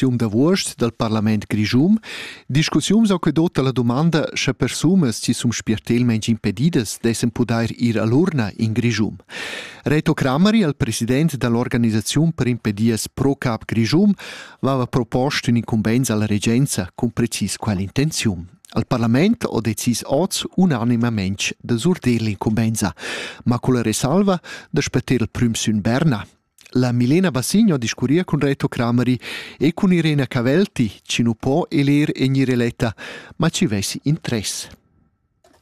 votaziun d'avuost dal parlament grischun, discussiuns ho que dot alla dumanda sche persunas chi sun spiertelmaing impedidas dessen pudair ir a l'urna in Grischun. Reto Crameri, il president dall'organisaziun per impedias Pro Cap Grischun, vava propost ün incumbenz alla regenza con precis quella intenziun. Al parlament ho decis oz unanimamente da surdir l'incumbenza, ma con la resalva da spetter il prüm sün Berna, La Milena Bassigno discurria cun Reto Crameri e cun Irena Cavelti chi nu po eler in Ireletta, ma chi vessi interess.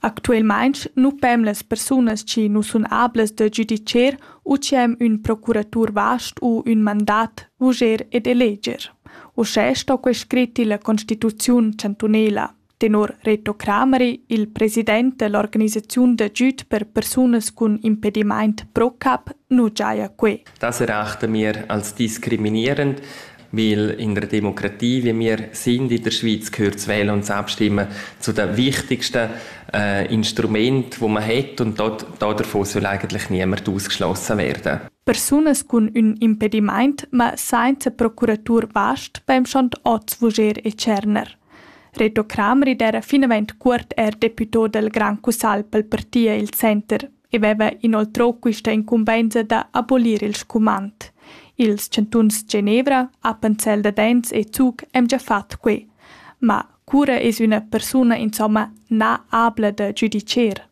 Actuelmaing nu pem las persunas chi nu sun ablas da giudicher u chi hem ün procuratur vast u ün mandat vuger ed eleger. Uschè sto quai scrit illa Constituziun chantunela. Tenor Reto Crameri, il president dell'organisaziun d'agüd per persunas cun impedimaint ProCap, nu giaja que. Das erachten wir als diskriminierend, weil in der Demokratie, wie wir sind in der Schweiz, gehört das Wählen und das Abstimmen zu den wichtigsten äh, Instrumenten, die man hat und dort, davon soll eigentlich niemand ausgeschlossen werden. Personas cun ün impedimaint ma sainza procuratur vast beim Standort Vuger e Tscherner. Reto Crameri era finavant cuort er deputà dal Grand Cussagl pel parti il center e veva inoltrò quista incumbenza da abolir il scumand. Ils chantuns Genevra, Appenzell Dadenz e Zug han già fat que. Ma cura es üna persuna insomma na abla da giudicher?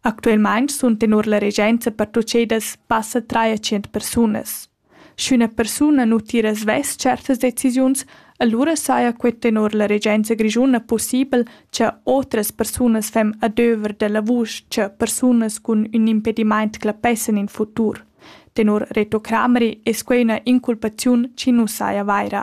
Actualmein sun tenor la regenza pertuchedas passa tschient persunas. Sch'üna persuna nu tira svess certas decisiuns, alura saja quai tenor la regenza grischuna pussibel cha otras persunas fem adöver da lavur cha persunas cun ün impedimaint clapessan in futur. Tenor Reto Crameri es quai üna inculpaziun chi nu saja vaira.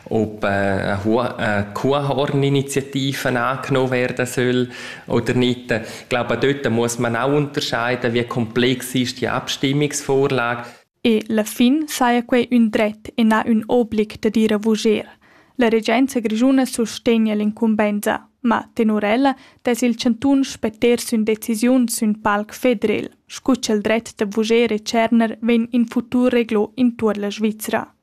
ob eine Kuhhorn-Initiative angenommen werden soll oder nicht. Ich glaube, dort muss man auch unterscheiden, wie komplex ist die Abstimmungsvorlage. E la fin saja quei ün dret e na ün oblig da dire vuger. La regenza grischuna sustegna l'incumbensa, ma tenor ella dess il chantun spetter sün decisiun sün palc federel, scu cha'l dret da vuger e tscherner vegn in futur reglo intuor la Svizra.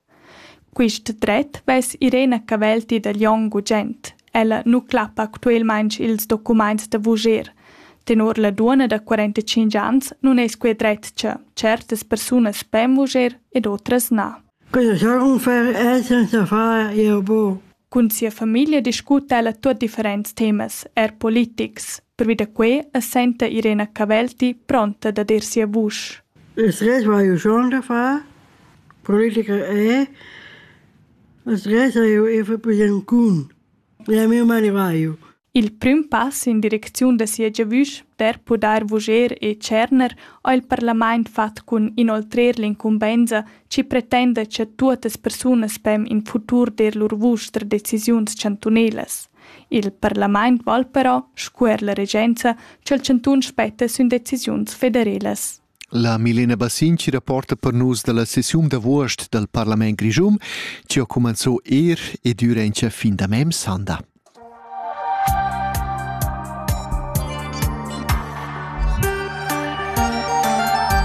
Quist dret vess Irena Cavelti da Glion gugent. Ella nu clappa actuelmaing ils documaints da vuger. Tenor la duonna da quarantacinq ans nun es quai dret cha tschertas persunas pen vuger ed otras na. Quella sonfa es senza far eir bo. Cun sia famiglia discuta ella tuot differents temas, eir politics. Pervi da quei es senta Irena Cavelti pronta dad ir sia vusch. Es res vai schon da far. Politiker è. Es res hai eu Bancun. E a mio marivaio. Il prüm pass in direcziun da sia giavüsch per pudair vuger e tscherner ha il parlament fat cun inoltrer l'incumbenza ci pretenda cha tuottas persunas pem in futur der lur vusch tra decisiuns chantunelas. Il parlament val però, sco er la regenza, ch'el chantun spetta sün decisiuns federelas. La Milena Bassinci rapporta per nus dalla sessiun d'avuost dal Parlament Grischun, che ha cumanzò er e durante fin da mem sanda.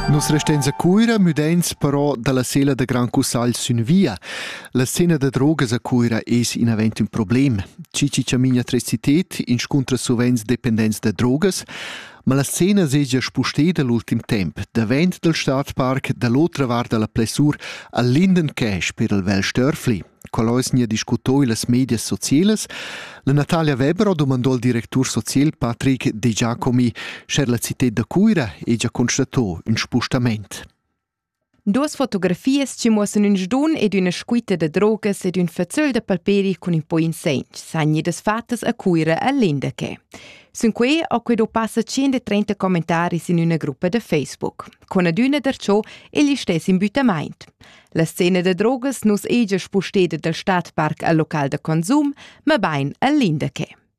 Nos resteins a Cuira müdains però dalla sela da Gran Cussagl sün via. La scena da drogas a Cuira es inavant ün problem. Chi chi chamina trecited inscuntra suvenz dependents da drogas, ma la scena segia spusteda l'ultim temp davent dal stadparc da l'otra vart da la plessur al Linden Cash per il Vel Störfli. Coloisnia discutò las medias socielas. La Natalia Weber domandò al directur social Patrick De Giacomi, scher la cited da Cuira e già constatò un spustament. Duas fotografias chi muossan ün sdun ed üna scuita da drogas ed ün fazzöl da palperi cun ün po insegn san gnir fattas a Cuira a Lindaquet. Sun quai ho que do passa 130 commentaris in üna gruppa da Facebook. Con adüna darcho il listess imbüttamaint. La scena da drogas nus egia spusteda dal Stadpark al local da consum, ma bain a Lindaquet.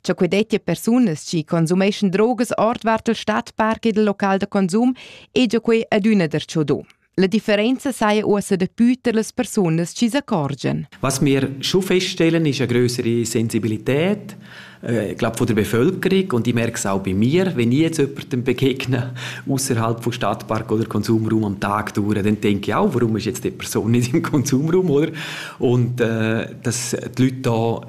Cha que dettia persunas chi consumeschan drogas ordvart il stadpark ed il local da consum e già quei adüna darcho do. La differenza saja uossa dapü tar las persunas chi s'accorgian. Was wir schon feststellen, ist eine größere Sensibilität, äh, ich glaube von der Bevölkerung und ich merke es auch bei mir, wenn ich jetzt jemandem begegne, außerhalb von Stadtpark oder Konsumraum am Tag durch, dann denke ich auch, warum ist jetzt die Person nicht im Konsumraum, oder? Und äh, dass die Leute da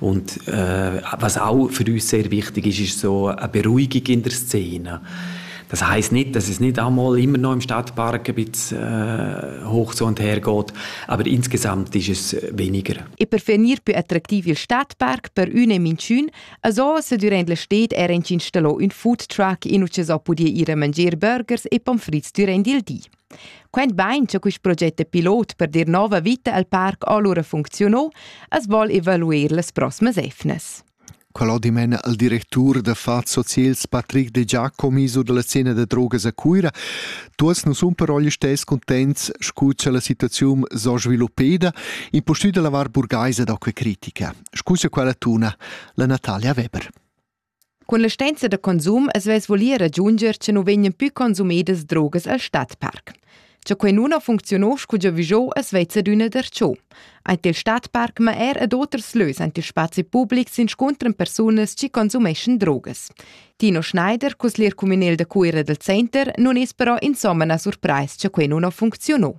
Und äh, was auch für uns sehr wichtig ist, ist so eine Beruhigung in der Szene. Das heißt nicht, dass es nicht einmal immer noch im Stadtpark ein bisschen äh, hoch so und her geht, aber insgesamt ist es weniger. E per finir più attraktiv il Stadtpark per üne minchün, also se durant stet er installo un food truck in uce so pudie ire mangier burgers e pommes frites durant il di. Quent bain cha quist proget da pilot per dir nouva vita al parc alura funcziuno, as voul evaluer las proximas efnas. Quella dimena al directur da fat socials Patrick De Giacomi su dalla scena da drogas a Cuira, tuots nu sun però gli stess contents scu cha la situaziun s'ho sviluppeda, impustüt da lavar burgaisa da que critica. Scusa quella tuna, la Natalia Weber. Cun la stenza da consum as vess voli ragiunger cha nu vegnan pü consumedas drogas al stadparc. Cha quai nun funcziuno scu giavüschò as vezza adüna darcho. Aint il stadparc ma eir ad oters lös aint il spazi public s'inscuntran persunas chi consumeschan drogas. Tino Schneider, cusglier cumünel da Cuira dal center, nun es però insomma na surprais cha quai nun funcziuno.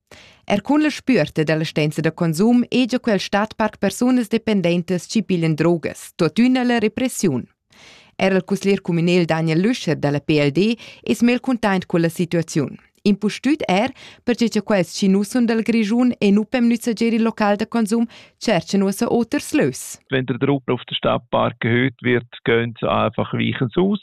Er cun la spüerta da la stanza da consum hegia quel stadparc persunas dependentas chi piglian drogas, tuottüna la repressiun. Er il cusglier cumünel Daniel Lüscher da la PLD es mel cuntaint culla situaziun. Impustüt er perche cha quels chi nu sun dal Grischun e nu pem nüzzager il local da konsum tscherchan uossa oters lös. Wenn der Truppen auf den Stadtpark erhöht wird, gehen sie einfach weiches aus.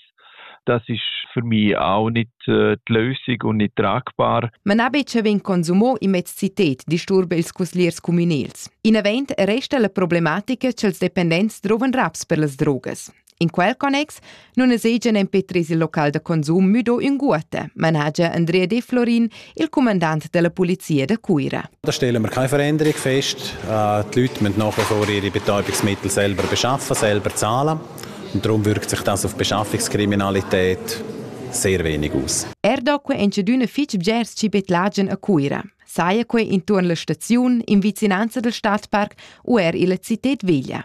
Das ist für mich auch nicht äh, die Lösung und nicht tragbar. Man ha betg vegn consumo in mez cited, disturba ils cusliers communals. In event resta la problematica ch'els dependents drovan raps per las drogas. In quel connex non esegian en petres il local da consum müdo ünguotta, managia Andrea De Florin, il cumandant della polizia da Cuira. Da stellen wir keine Veränderung fest. Äh, die Leute müssen nach wie vor ihre Betäubungsmittel selber beschaffen, selber zahlen. Und darum wirkt sich das auf Beschaffungskriminalität sehr wenig aus. Er doque in cedüne fitg bgers cibetlagien a Cuira. Saia quei intuorn la staziun, in vicinanza del stadpark u er illa cited veglia.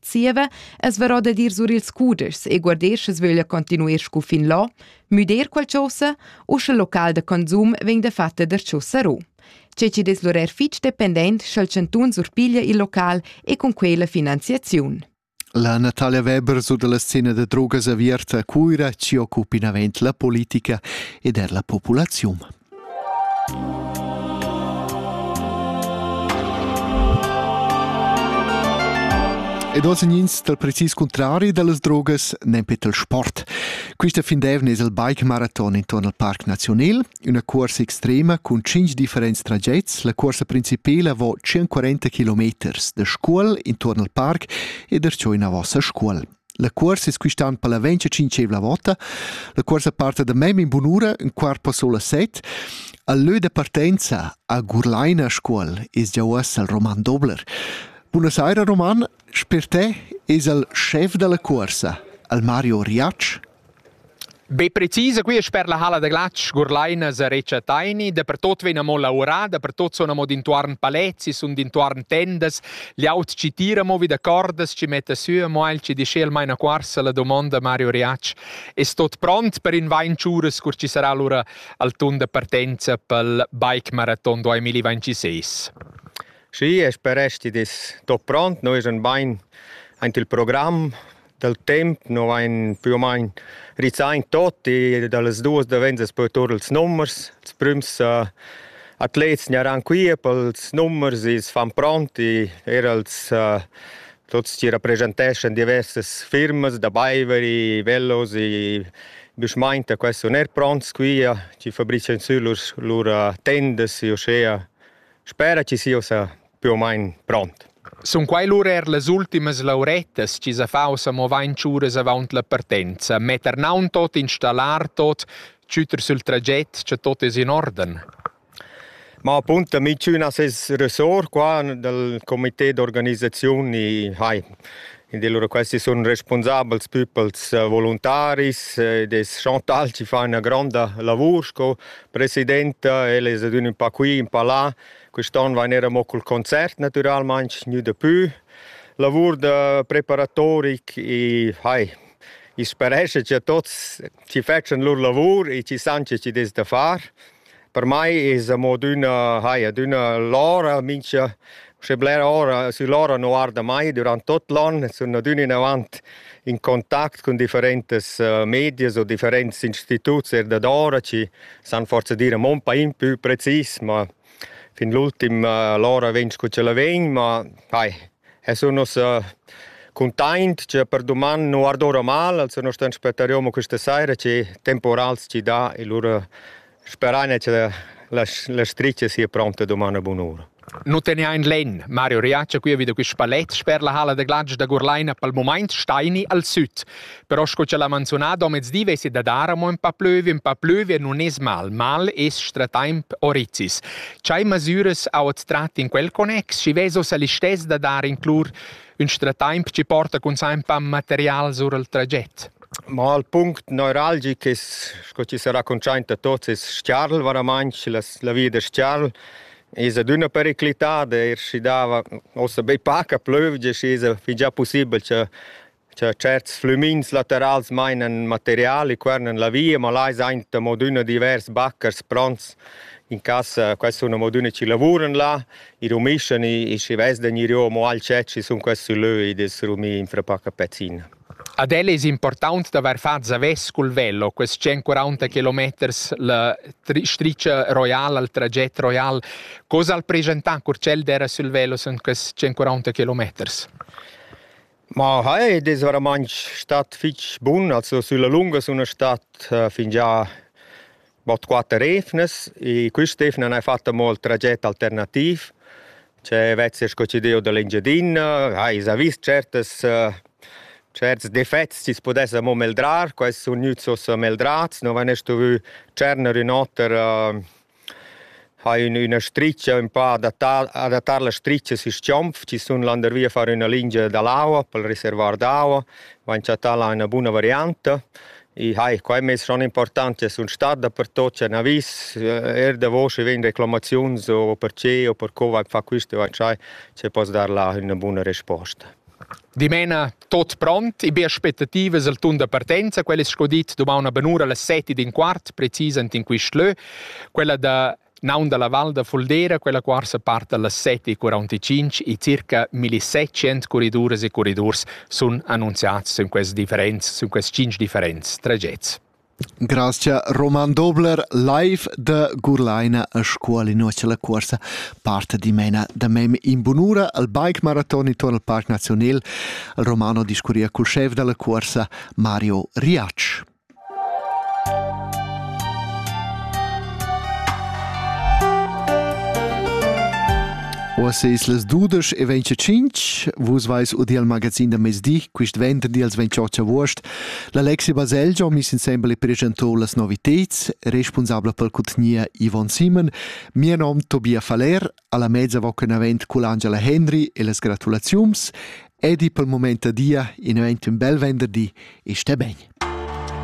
Zieva es varò da dir sur ils cudeschs e guardesch as vöglia continuer scu fin là, müder qualchosa u sche local da consum vegn dafatta darcheu sarò. Che chi'd es l'urer fich dependent scha'l chantun surpiglia il local e cun quai la finanziaziun. La Natalia Weber su dalla scena da drogas aviert a Cuira ci occupa inavent la politica ed er la populaziun. Ed oz ins dal precis cuntrari da las drogas nempe dal sport. Quista fin d'eivna es il bike maraton intorn al Parc Naziunel, üna cuorsa extrema cun tschinch differents tragets. La cuorsa principela vo 140 km da Scuol intorn al parc ed es giò inavò a Scuol. La cuorsa es quist'an palaventsch tschintschevla vota. La cuorsa parta da mem in bunura, in quart po solo set. Al lö da partenza a Gurlaina Scuol es già uossa il Roman Dobler. Buonasera Roman, sper te es il chef della cuorsa, al Mario Riac, Be precisa qui sper la halla da glatsch Gurlaina sa recha Taini, dapertot vegn amo laurà, dapertot sun amo d'intuorn palezzi, sun d'intuorn tendas, liaut chi tira mo vi da cordas, chi metta sü amo el chi disch el maina cuorsa la domonda Mario Riatsch. Es tot pront per invain chüras cur chi sarà lura al tun da partenza pel bike marathon 2026? Schi, e speresti dis tot pront, no es un bain aint il program, dal temp no vain più o main rizaint tuot e da las duos davents es poi tour ils numers. Ils prüms atlets gnaran quia pels numers e s'fan pront e eir els tuots chi rapreschanteschan diversas firmas da baiver e velos e büschmainta qua sun eir pronts quia chi fabrichian sü lur lur tendas e uschea spera chi sia ussa più o meno pront. Sun quai lura er las ultimas laurettas chi sa faus amo vain tschures avaunt la partenza, metter naun tot installar, tot chüter sül traget, cha tot es in orden? Ma appunto minchünas es ressort qua dal comité d'organisaziun i hai. Ed allura questi sun respunsabels püpels eh, voluntaris eh, des Chantal chi fa üna gronda lavur sco presidenta, ella es adüna un pa qui, un pa là Quest'on vain era mo cul concert natüralmaing gnü dapü. Lavur da preparatorik e hai, i sparescha cha tuots chi fetschan lur lavur e chi san che chi dess da far. Per mai es amo adüna, hai, adüna l'ora mincha, uschè blera ora, sü l'ora nu arda mai dürant tuot l'on e sun adüna inavant in contact cun differentas medias o differents instituts er dad ora chi san forza dir mon pain più precis, ma fin l'ultim uh, l'ora vegn scu ch'ella vegn, ma ai, es un nos uh, cuntaint che per duman nu ardora mal, also nu stan spettariomo questa saira che temporals ci dà e lura speraine che la, la, la striccia sia pronta duman a bun'ura. Nu tegnain lenn, Mario riatscha quia vi da quist palet sper la halla da glatsch da Gurlaina pel mumaint staini al süd. Però sco cha l'ha manzunà domezdi vesi da dar amo ün pa plüvi, ün pa plüvi e nun es mal. Mal es stratemp orizis. Chai masüras ha ot trat in quel connex, schi veso sa listess da dar in clur ün stratemp chi porta cun sempa material sur al traget. Ma il punct neuralgic es, sco chi s'ha raccontschaint da tots, es Stiarl, varamaing la, la via da Stiarl. Es adüna periclità d'eir schi dava uossa be paca plövgia, schi es fin già pussibel cha cha tscherts flümins laterals mainan materiali qua nen la via, ma là es aint amo adüna divers baccars pronts. In cas quai sun amo adüna chi lavuran là, i rumischen, i schi vess da gnir amo al chet, schi sun quels sü lö ed es rumì infra paca pezzina. Ad el es important d'avair fat zavess cul velo, quels tschient quaranta kilometers la tri stricha roiala, il traget roial. Co s'ha'l preschantà cur ch'el d'eira sül velo sün quests tschient quaranta kilometers? Ma hai ed es vairamaing stat fich bun. Also sülla lunga suna stat fingià bod quatter evnas e quist'evna n'ha fatta mo il traget alternativ che vezzer succedieu da l'Engiadina, ha esa vis tschertas tscherts defets chi's pudessa mo meldrar, quai sun gnüts uossa meldrats, no vain stuvü tscherner ün oter ha ün üna stricha ün po adattar adattar la stricha sü Schiomf, chi sun landervia a far üna lingia da l'aua pel reservoir d'aua, vain chattà là üna buna varianta i hai qua e mez schon important che sun stat dapertut c'è ün avis eir davo schi vegn reclamaziuns o perche o per co vain fa quist e vain dschai che poss dar là üna buna resposta. Dimena tot pront, e be aspettativas al tun da partenza, quel es sco dit dumaun a benura las seti d'in quart, precisant in quist lö, quella da naun da la Val da Fuldera, quella quarsa part da las 7.45 e circa 1700 corriduras e corridurs sun annunziats sün quests differents, sün quests tschinch differents tragets. Grazcha Roman Dobler live da Gurlaina a scuol innocia la cuorsa parta dimena da mem in bunura al bike maraton intorn al Parc Nazional. Il Romano discurria cul chef dalla cuorsa Mario Riac. Oas eis las dudesch e 25, vus vais u dil magazin da mezdi, quist venter dils 28 avuost, L'Alexi Baselgia miss insembel e pregentor las novitads, responsabla per cutgnia Yvonne Simon, mia nom Tobia Faller, alla mezza va con avent cul Angela Henry e las gratulaziums, edi pel moment a dia in event un bel venderdi e stai bene.